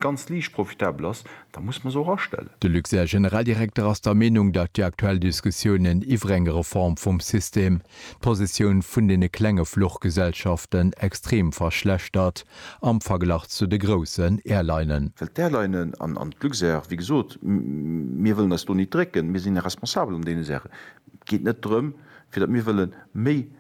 ganz liicht profitabel ass, da muss mer se och astellen. De Luxair Generaldirekter ass der Meenung, datt déi aktuell Diskussiounen iwwer eng Reform vum System d'Positioun vun deene klenge Fluchgesellschaften extrem verschlechtert am Verglach zu de groussen Airlinen. Well d'Airlinen an d'Luxair, wéi gesot, mir wëllen eis do nit drécken, mir sinn responsabel an deene Saachen, et geet net drëm, fir datt mir wëlle méi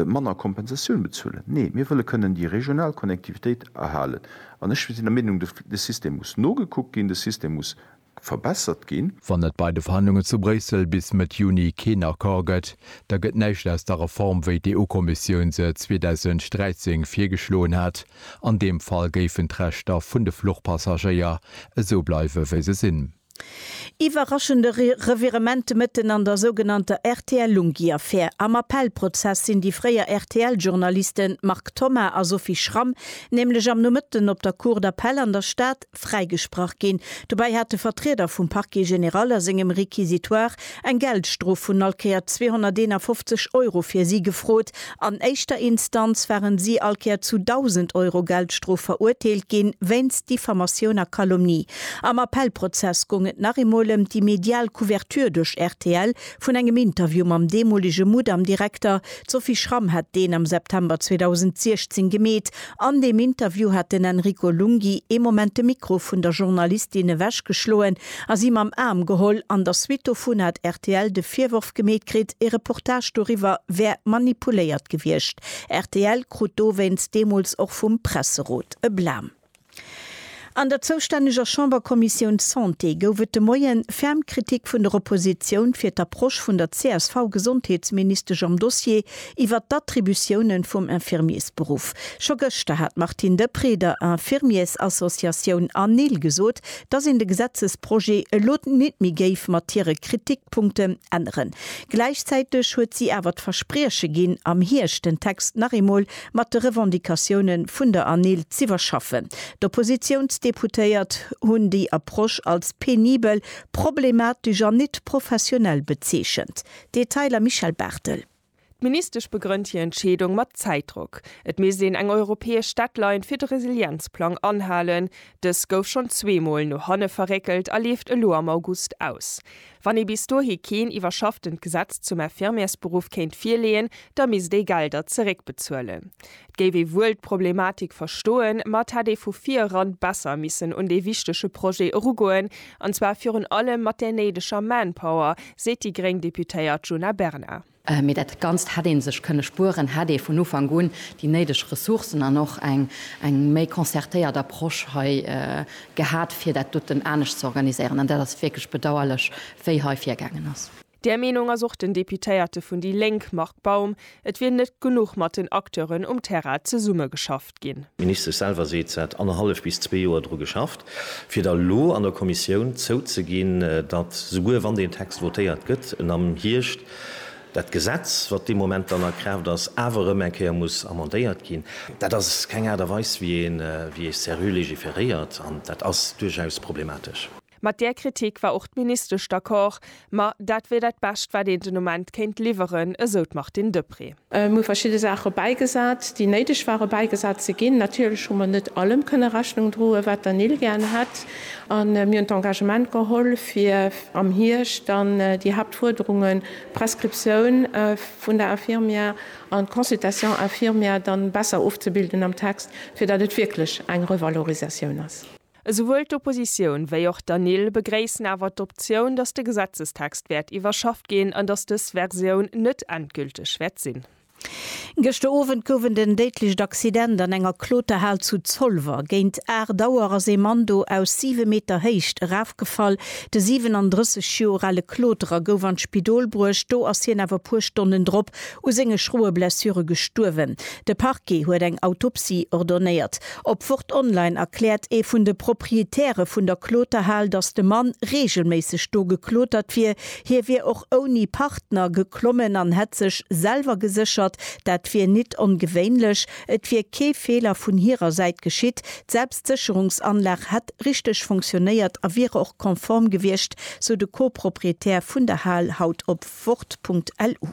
manner Kompensatioun bezuelen. Nee, mir wëlle kënnen déi regional Connectivitéit erhalen. An ech sinn der Meenung, de System muss nogekuckt ginn, de System muss verbessert ginn. Wann et bei de Verhandlungen zu Bréissel bis Mëtt Juni keen Accord gëtt, da gëtt näischt aus der Reform, wéi d'EU-Kommissioun se 2013 virgeschloen hat. An deem Fall géifen d'Rechter vun de Fluchpassagéier esou bleiwe wéi se sinn. Iwwerraschende Revirement de Mëtten an der sougenannter RTL-Lunghi-Affär. Am Appellprozess sinn déi fréier RTL-Journalisten Marc Thoma a Sophie Schramm nämlech am Nomëtten op der Cour d'appel an der Stad fräigesprach ginn. Dobäi hate Vertrieder vum Parquet général a sengem Réquisitoire eng Geldstrof vun all Kéier 251 Euro fir si gefrot. An éischter Instanz waren si all Kéier zu 1.000 Euro Geldstrof verurteelt ginn, wéinst Diffamatioun a Calomnie. Am Appellprozess goung et nach eemol ëm déi medial Couverture duerch rtl vun engem Interview mam deemolege Mudam-Direkter. D'Sophie Schramm hat deen am September 2016 gemeet. An deem Interview hat den Enrico Lunghi ee Moment de Mikro vun der Journalistin ewech geschloen a si mam Aarm geholl. An der Suite dovun hat rtl de Virworf gemeet kritt, ee Reportage doriwwer wär manipuléiert gewiescht. Rtl krut dowéinst deemools och vum Presserot e Blam. An der zoustänneger Chamberkommissioun Santé gouf et de Moie ferm Kritik vun der Oppositioun fir d'Approche vun der CSV-Gesondheetsministesch am Dossier iwwert d'Attributiounen vum Infirmiersberuff. Scho gëschter hat d'Martine Deprez der Infirmiersassociatioun ANIL gesot, dass een de Gesetzesprojet elo nit méi géif mat hire Kritikpunkten änneren. Gläichzäiteg huet si awer d'Versprieche ginn, am Hierscht den Text nach eemol mat de Revendicatioune vun der ANIL z'iwwerschaffen. D'Oppositiounsdeputéiert hunn déi Approche als penibel, problematesch an nit professionell bezeechent. Detailer Michèle Barthel. D'Ministesch begrënnt hir Entscheedung mat Zäitdrock. Et misst een eng europäesch Deadline fir de Resilienzplang anhalen. Dës gouf schonn zweemol no hanne verréckelt a leeft elo am August aus. Wann ee bis dohi keen iwwerschafftent Gesetz zum Infirmiersberuff kéint virleeën, da misst ee Gelder zeréckbezuelen. Et géif ee wuel d'Problematik verstoen, ma et hätt ee vu vir eran besser missen un dee wichtege Projet erugoen, an zwar virun allem mat där néideger Manpower, seet déi gréng Deputéiert Djuna Bernard. Mee dat Ganzt hätt ee sech kënne spueren, hätt ee vun Ufank un déi néideg Ressourcen an och eng méi concertéiert Approche hei gehat, fir dat doten anescht ze organiséieren. An dat ass wierklech bedauerlech, wéi hei virgaangen ass. Där Meenung ass och den Deputéierte vun déi Lénk, Marc Baum. Et wier net genuch mat den Acteuren um Terrain zesummegeschaff. ginn. D'Ministesch selwer seet, se hätt annerhallef bis zwee Joer dru geschafft, fir da lo an der Kommissioun zouzeginn, datt, souguer wann deen Text votéiert gëtt, en am Hierscht dat Gesetz, wat dee Moment dann a Kraaft ass, awer erëm eng Kéier muss amendéiert ginn. Dat ass keng Aart a Weis, wéi ee se sérieux légiféréiert, an dat ass duerchaus problematesch. Mat där Kritik war och d'Ministesch d'accord. Ma dat wier dat Bescht, wat een den Ament kéint liwweren, esou d'Martine Deprez. Mir hu verschidde Saache bäigesat, déi néideg ware bäigesat ze ginn. Natierlech hu mer net allem kënne Rechnung droen, wat der Nil gär hätt. A mir hunn d'Engagement geholl, fir am Hierscht dann déi Haaptfuerderungen, d'Prescriptioun vun der Infirmière an d'Consultation infirmière, dann besser ofzebilden am Text, fir datt et wierklech eng Revalorisatioun ass. Esouwuel d'Oppositioun wéi och d'ANIL begréissen awer d'Optioun, datt de Gesetzestext wäert iwwerschafft ginn an datt dës Versioun net endgülteg wäert sinn. Gëschter Owend gouf en den déidlecht Accident an enger Kloterhal zu Zolwer. Géint 8 Auer ass ee Mann do aus 7 Meter Héicht erafgefall. De 37 Joer ale Kloterer gouf an d'Spidol bruecht, do ass hien awer e puer Stonnen drop u senge schroe Blessure gestuerwen. De Parquet huet eng Autopsie ordonnéiert. Op Wort Online erkläert ee vun de Proprietäre vun der Kloterhal, datt de Mann reegelméisseg do geklotert wier. Hie wier och ouni Partner geklommen an hätt sech selwer geséchert. Dat wier nit ongewéinlech. Et wier kee Feeler vun hirer Säit geschitt. D'Selbstsécherungsanlag hätt richteg funktionéiert a wiere och konform gewiescht, sou de Co-Proprietär vun der Hal haut op Wort.lu.